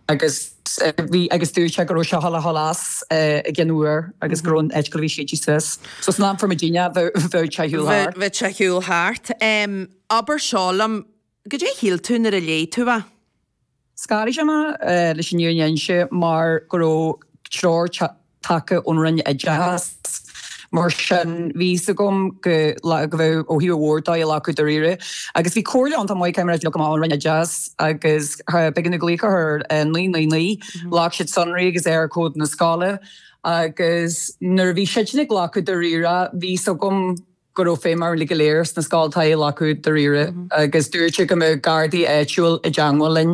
Agus bhí, agus dúirt sé go raibh sé thall a sholas i gcionn uair agus go raibh an eitceall a bhí siad suas. So san am for me dínne bheadh sé shiúl thart. Bheadh sé shiúl thart. Abair seo liom, caidé a shíl tú nuair a léigh tú é? Scanraigh sé mé leis an fhírinne a inse mar go raibh treoir tagtha ón Roinn Oideachais. Mar sin, bhí fhios agam go bheadh ó thaobh mhór dóigh á ghlacadh dáiríre. Agus bhí comhairle iontach maith, mar a luaigh mé, ón Roinn Oideachais agus b'éigean domh glaoch a chur ar 999, ghlac siad sonraí agus Eircode na scoile. Agus nuair a bhí siadsan á ghlacadh dáiríre, bhí fhios agam. go raibh feidhm orainn uilig go léir sna scoltacha é a ghlacadh dáiríre agus dúirt sé go mbeadh gardaí áitiúil i dteangmháil linn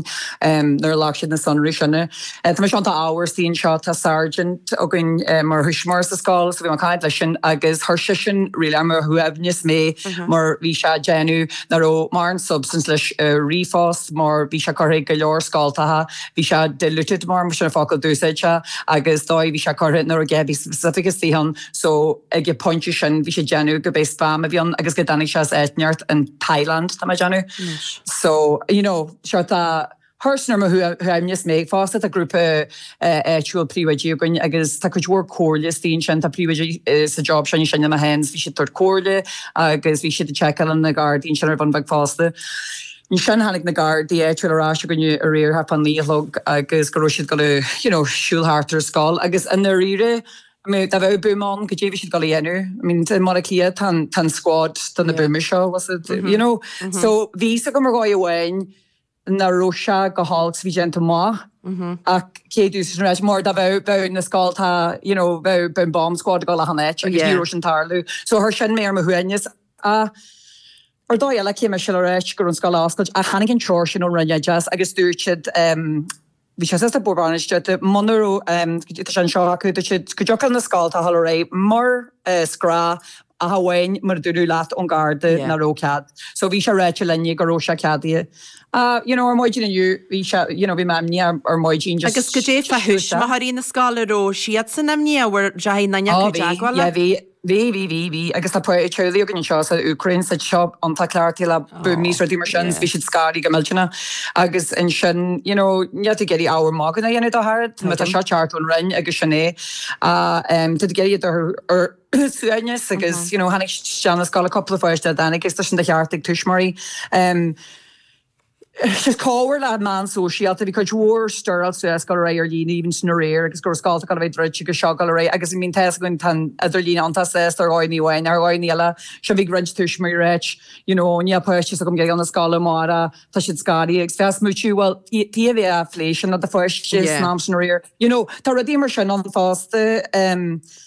nuair a ghlac siad na sonraí sin. Tá mise, tá an t-ádh ormsa anseo tá sergeant againn mar thuismitheoir sa scoil so bhí mé ag caint leis sin agus chuir sisean really ar mo shuaimhneas mé mar bhí sé ag déanamh nach raibh mórán substance leis an ríomhphost mar bhí sé curtha ag go leor scoltacha bhí sé diluted mar sin an focal a d'úsáid sé agus an dóigh a bhí sé curtha nach raibh a dhath specific istigh ann So ag an phointe sin bhí sé ag déanamh gurb é spam a bhí ann agus go dtáinig sé as áit inteacht in Thailand tá mé ag déanamh. Anois. So you know sórt chuir sin ar mo shuaimhneas mé agus fosta tá grúpa áitiúil príomhoidí againn agus tá cuid mhór comhairle is daoine ansin atá príomhoidí sa job seo anois na hens bhí siad ag tabhairt comhairle agus bhí siad ag seiceáil leis na Gardaí sin ar bhonn beag fosta. Ansin tháinig na Gardaí áitiúil ar ais againn aréir thart fá naoi a chlog agus go raibh siad ag dul you know siúl thart ar an scoil agus i ndáiríre I mean dá bheadh buama ann caidé a bhí siad ag dul a dhéanamh. I mean i mBaile Átha Cliath atá an tá an squad do na buamaí seo was it you know. So bhí a fhios agam ar dhóigh amháin nach raibh sé go h-alt bhí déanta maith ach cé dús leis an ráiteas mar dá bheadh bheadh na scoltacha you know bheadh bheadh an bomb squad ag dul achan áit agus ní raibh sin ag tarlú. So chuir sin mé ar mo shuaimhneas. Ach ar dhóigh eile cé mise le rá go raibh an scoil á oscailt ach tháinig an treoir sin ón Roinn Oideachais agus dúirt siad ehm Bhí sé suas don bhord bainistíochta muna raibh sé anseo acu. Dúirt sé go dtiocfadh leis na scoltacha a ghabháil ar aghaidh mar is gnách ach amháin má dúradh leat ón gharda nach raibh cead. So bhí sé ráite linne go raibh sé ceadaithe. Ah, you know, ar maidin inniu bhí sé, you know, bhí mé imníoch ar maidin just. Agus caidé fá thuismitheoirí na scoile, an raibh siadsan imníoch, an bhfuair, an deachaidh aon duine acu i dteagmháil leat? Bhí, bhí, bhí, bhí agus tá cúpla teaghlaigh againn anseo as an Úcráin, is tá siad iontach cleachtaithe le buamaí 's rudaí mar sin 's bhí siad scanraithe go millteanna agus ansin you know níl tú ag iarraidh ábhar magaidh a dhéanamh de ach oiread mar tá seo ag teacht ón Roinn agus sin é ach em tá tú ag iarraidh iad a chur ar suaimhneas agus you know tháinig siad chun na scoile, cúpla pháiste nach dtáinig agus tá sin de cheart ag tuismitheoirí em Is comhartha le meán sóisialta. Bhí cuid mhór stirl suas go réidh ar líne, even san aréir, agus go raibh scoltacha ag dul a bheith druidte agus seo go léir. Agus I mean, tá's againn, tá an t-idirlíon iontach sásta ar dhóigh amháin, ar dhóigh eile, seo bhí roinnt tuismitheoirí ag rá, you know, níl páistí s'agam ag dul 'na scoile amárach, tá siad scanraithe agus bhí mé ag smaoitiú, bhuel, tú a bhí á phlé sin le do pháiste san am sin aréir. You know, tá rudaí mar sin ann fosta.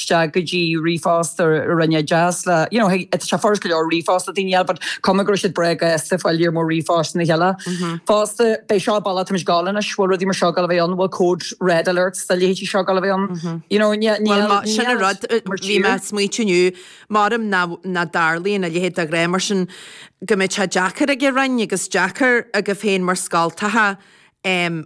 isteach go dtí ríomhphost na Roinne Oideachais le you know tá sé furast go leor ríomhphost duine eile but cuma go raibh siad breá gasta ag fáil iar mo ríomhphost a chéile fosta ab é seo an bealach atá muid ag dul anois bhfuil rudaí mar seo ag dul a bheith ann bhfuil code red alerts do leithéidí seo ag dul a bheith ann you know ní ní Bhuel, má- sin an níl rud, uh, mar bhí mé ag smaoitiú inniu, maidin ná ná dtarlaíonn a leithéid de ghrá mar sin, go mbeidh sé deacair ag an Roinn agus deacair agaibh féin mar scoltacha, em,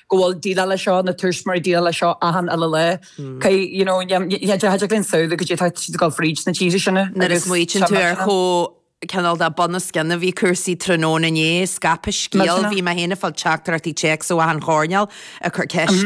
go bhfuil ag déileáil leis seo, na tíortha sin mar ag déileáil leis seo achan uile lá. Cé, you know, níl, níl, níl, níl aon samhail goidé atá siad ag dul fríd sna tíortha sin. Nuair a smaoitíonn tú ar chomh, cineál de bunoscionn a bhí cúrsaí tráthnóna inné, scaipeadh scéal, bhí mé féin ag fáil teachtaireachtaí téacs ó achan choirnéal ag cur ceist